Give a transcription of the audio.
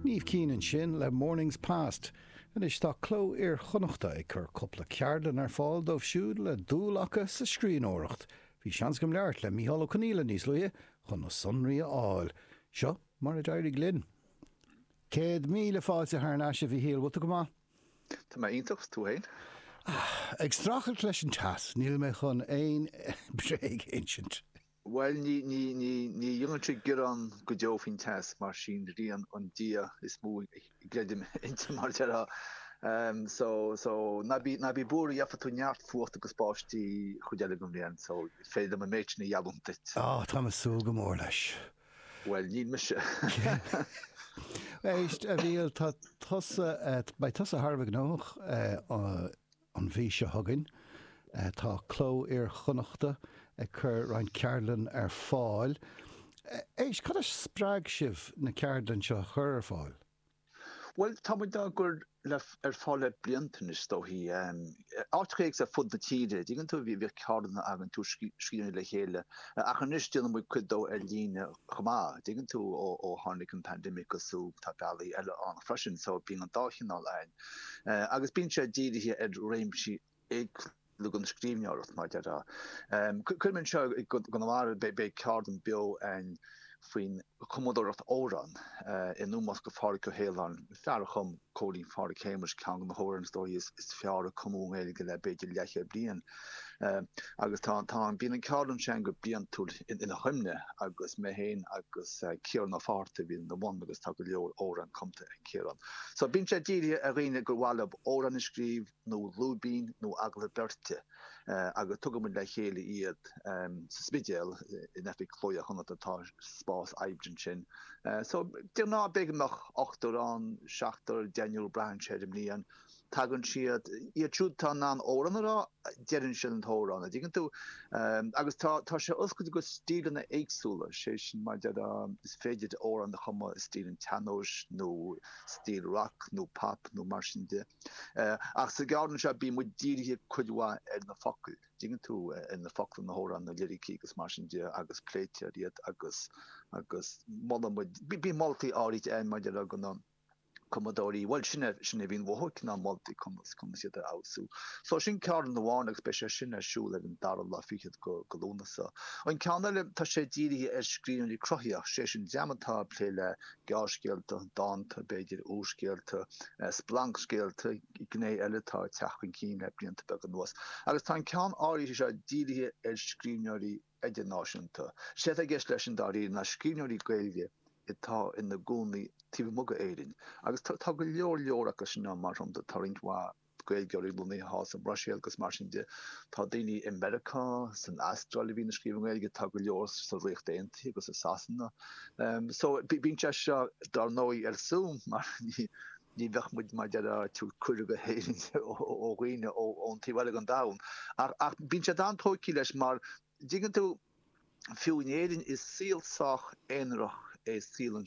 Niamh Keane ansin le Mornings Past. Anois tá Cló Iar-Chonnacht ag cur cúpla ceardlann ar fáil dóibh siúd le dul acu sa scríbhneoireacht. Bhí seans agam labhairt le Micheál Ó Conghaile níos luaithe chun na sonraí a fháil. Seo mar a d'éirigh linn. Céad míle fáilte thar n-ais, a Mhichíl. Bhfuil tú go maith? Tá mé iontach, tú féin? Ag streachailt leis an teas, níl mé chun aon bréag a insint. Bhuel, ní, ní, ní, ní dhéanainnse gearán go deo faoin teas mar 's í an ghrian an Dia is mó a gcreidim inti mar déarfá. So, so, ná bí, ná bí buartha, gheobhaidh tú neart fuachta agus báistí an chuid eile den bhliain, so is féidir liom an méid sin a gheallúint duit. Ó, táim ag súil go mór leis. Bhuel, níl mise. Éist, a Mhichíl, tá tusa, beidh tusa thar a bheith gnóthach. An mhí seo chugainn, tá Cló Iar-Chonnacht ag cur roinnt ceardlann ar fáil. Éist, cad a spreag sibh na ceardlainn seo a chur ar fáil? Bhuel, tá muid á gcur ar fáil le blianta anois, is dóichí. Áiteacha éagsúla ar fud na tíre, an dtuigeann tú, bhíodh ceardlanna againn, tabhairt scríbhneoirí le chéile, ach anois déanann muid cuid díobh ar líne chomh maith, an dtuigeann tú, ó tháinig an pandemic agus ó tá bealaí eile ann freisin, so bíonn an dá chineál ann. agus bíonn sé dírithe ar réimsí éagsúla den scríbhneoireacht mar a déarfá. Cuirim anseo i gConamara, beidh ceardlann beo ann faoin chumadóireacht amhrán in ómós do Phádraig Ó hAoláin, fear a chum Cóilín Phádraig Shéamais, ceann de na hamhráin is dóichí is fearr a cumadh i nGaeilge le b'fhéidir leathchéad bliain. Agus tá tá an bíonn an ceardlann sin go bliantúil ina chuimne agus mé féin agus Ciarán Ó Fátharta a bhíonn ina bhun agus tá go leor amhrán cumta ag Ciarán. So, bíonn sé dírithe ar dhaoine gur mhaith leo amhrán a scríobh nó lúibín nó agallamh beirte agus tugann muid le chéile iad sa Spidéal in oifig Chló Iar-Chonnacht, tá spás oibre againn ansin. So, de ghnáth bíonn ochtar ann, seachtar, deichniúr, braitheann sé ar an mbliain. tagann siad iad siúd atá in ann amhrán a rá, deireann siad an t-amhrán, an dtuigeann tú. Agus tá, tá sé oscailte go stíleanna éagsúla, is é sin mar a déarfá, is féidir amhrán a chumadh i stíl an tsean-nóis nó stíl rac nó pop nó mar sin de. Ach sa gceardlann seo bíonn muid dírithe cuid mhaith ar na focail, an dtuigeann tú, ar na focla na n-amhrán, na liricí agus mar sin de agus pléitear iad agus, agus molann muid, bíonn moltaí áirithe ann mar a déarfá do na. cumadóirí, bhuel sin é, sin é a bhíonn uathu, cineál moltaí conas, conas iad a fheabhsú. So sin ceardlann amháin agus beidh sé sin ar siúl ar an dara lá fichead de Lúnasa. An ceann eile, tá sé dírithe ar scríbhneoirí cruthaitheacha, sé sin dream atá ag plé le gearrscéalta, dánta, b'fhéidir úrscéalta, splancscéalta, gné eile atá ag teacht chun cinn le blianta beaga anuas. Agus tá an ceann áirithe seo dírithe ar scríbhneoirí idirnáisiúnta. Is é atá i gceist leis sin, dáiríre, ná scríbhneoirí Gaeilge atá ina gcónaí taobh amuigh d'Éirinn. Agus tá go leor leor acu sin ann, mar shampla, tá roinnt mhaith Gaeilgeoirí lonnaithe thall sa mBruiséil agus mar sin de. Tá daoine i Meiriceá, san Astráil a bhíonn ag scríobh i nGaeilge, tá go leor sa Ríocht Aontaithe agus i Sasana. So bíonn sé seo, dár ndóigh, ar Zoom mar. Ní bheadh muid mar a déarfá ag tabhairt cuireadh go hÉirinn do dhaoine ón taobh eile den domhan. Ach bíonn siad an-tógtha leis mar, dtuigeann tú, fiú in Éirinn is saol sách aonarach é saol an.